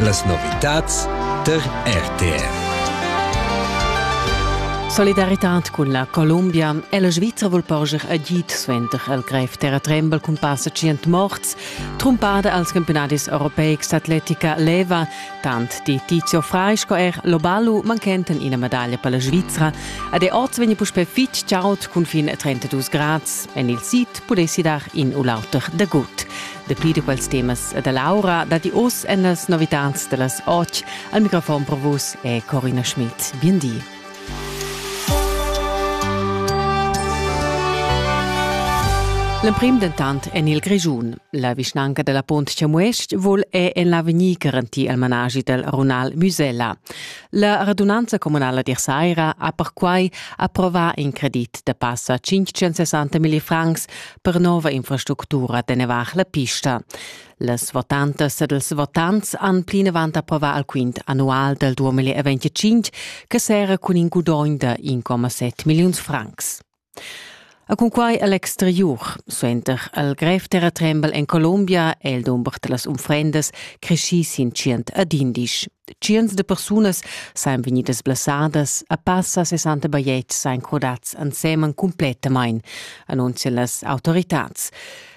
Las novitads tar RTR. Solidaritad cun la Columbia è la Svizra vul porscher agid suenter il grev terratrembel cun passa 100 morts, trumpada als campionadis europeics d'atletica leva, tant di Tizio Frai sco er Lobalu manchenten ina medaglia per la Svizra ed è oz vegni puspè fitg chaud cun fin 32 grads. En il sid pudessi dar in u l'auter da gut. Dapi da quels temas e da l'aura datti oz en las novitads da las otg. Al microfon per vus è Corina Schmidt. Bien di. L'emprim dentant en il Grischun. La vischnanca della Pont Chamuest vul è en l'avegnir garantir il managi del runal Musella. La radunanza comunala d'Irsaira ha perquai approvà in credit da passa 560 mil francs per nova infrastructura teneva la pista. Las votantas ed ils votants han plinavant approvà al quint annual del 2025 che sera cun in gudogn da 1,7 milliuns francs. A cunquai al exteriur, suenter al grev terratrembel en Colombia, è il dumber da las unfrendas creschì sin tschient ad indisch. Tschients de persunas sain vegnidas blessadas, a passa 60 bajetgs sain crodats ansemen complettamain, annunzia las autoritads.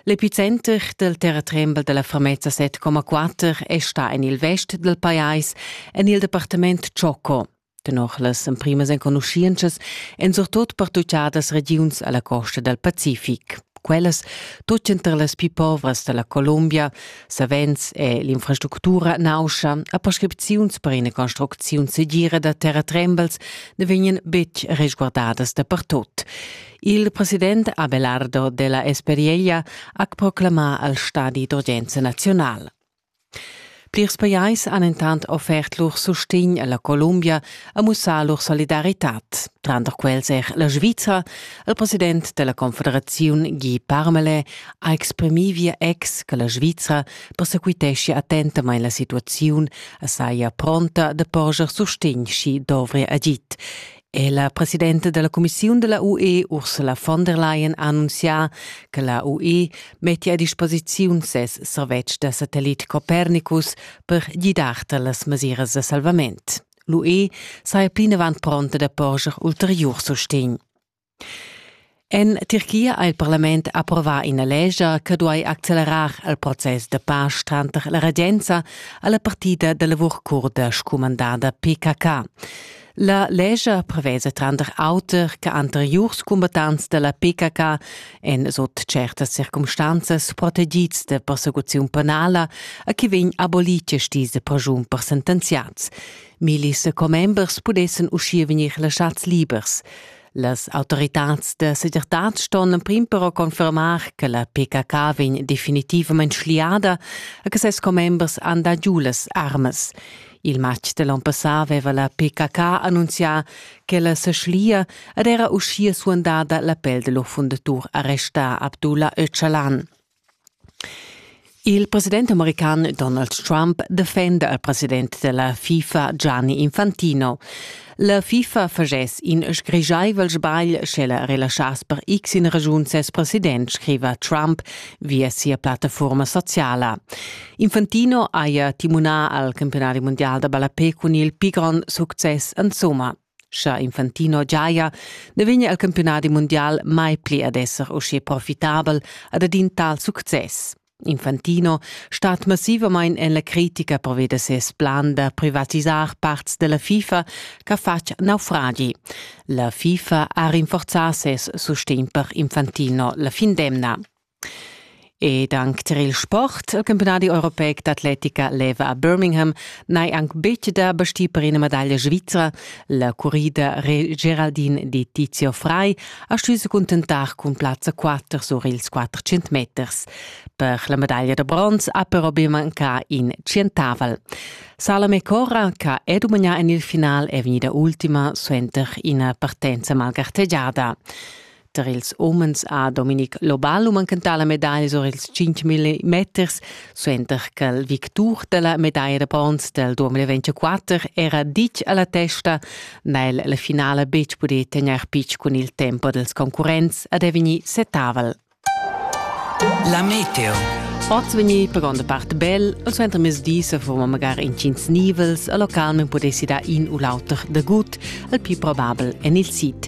L'epicenter del terratrembel della Fermezza 7,4 è sta en il vest del pajais, en il departement Choco. Tenor las emprimas enconuschientschas èn surtut pertuchadas regiuns alla costa del Pacific. Quellas, tut enter las più povras della Colombia, savens è l'infrastructura nauscha, a prescripziuns per ina construcziun segira da terratrembels ne vegnan betg resguardadas dapertut. Il president Abelardo della Esperieia ha proclamà al stadi d'urgenza nazional. Plirs pajais han intant offert lur sustegn alla Columbia a mussar lur solidaritat. Tranter quels er la Svizra. Il president della Confederazione Guy Parmelin ha exprimì via ex che la Svizra persequitescia attentamain la situaziun e saja pronta da porger sustegn schi dovria agit. è la presidenta della cumissiun della UE Ursula von der Leyen annunzià che la UE mettia a disposiziun ses servetsch da satellit Copernicus per gidar tar las mesiras da salvament. L'UE saja plinavant pronta da porscher ulteriur sustegn. En Tirchia ha il parlament approvà ina lesgia che duai accelerar il process da pace tranter la regenza e la partida da lavur curda scumandada PKK. La lesgia prevesa tranter auter che anteriurs combattants da la PKK en sut certas circumstanzas protegids da persecuziun penala a chi vegn abolite stise pregiun per sentenziats. Millis commembers pudessen uschia vegnir lasciats libers. Las autoritads da segirtad ston emprim però confermar che la PKK vegn definitivament schliada e che ses commembers han dà giu las armas. Il matg de l'on passà aveva la PKK annunzià ch'ella se schlia ed era uschia suandada l'appel de lur fundatur arrestà Abdullah Öcalan. Il president american Donald Trump defenda il president della FIFA Gianni Infantino. La FIFA fagess in sgrigiaivel sbagl, sche la relaschass per x in ragiun ses president, scriva Trump via sia plattaforma sociala. Infantino haja timunà al campionadi mondial da ballapé cun il pigron success insomma. Scha Infantino giaja, ne vegna il campiunadi mundial mai pli ad esser usche profitabel ad ad in tal success. Infantino stat massivamain en la critica proveda ses plan da privatisar parts della FIFA che fatg naufragi. La FIFA ha rinforzà ses sustegn per Infantino la fin d'emna. Ed anc tar il sport. Il campiunadi europeic d'atletica leva a Birmingham n'hai anc betg da bastir per ina medaglia svizra. La currida Geraldine di Tizio Frei ha stuì se cuntentar cun plazza 4 sur ils 400 meters. Per la medaglia da bronz ha però be mancà in tschientavel. Salome Corra, che è dumagnà en il final, è vegnida ultima suenter ina partenza malgartegiada. tar ils umens ha Dominic Lobal manchentà la medaglia sur ils 5.000 meters, suenter ch'el victur da la medaglia da bronz del 2024 era ditg a la testa, n'ha el la finala betg pudì tegnair pitg cun il tempo dels concurrents ad è vegnì setavel. La meteo. Oz vegni per gronda part bel, o suenter mesdi se forma magari in cins nivels, a local men potessi da in u l'auter de gut, al più probabel en il sit.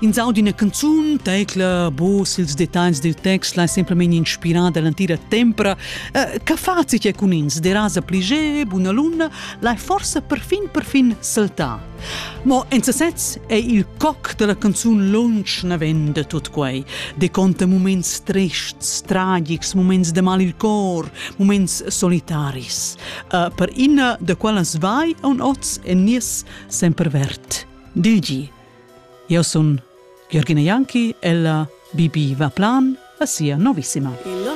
Ins aud ina canzun, tecla, bus, ils dettagls dil text lai semplamein inspirar dall'entira tempra. Eh, che fazi che cun ins derasa pli ge, buna luna, lai forsa perfin perfin saltar. Mo en sesez è il coc della canzun lunsch navend tut quei, de conta moments trists, tragics, moments de mal il cor, moments solitaris. Uh, per ina de quella svai un oz e nies sempervert. Digi, Eu sun Jürgina Janki, ella bibi va plan a sia novissima. Il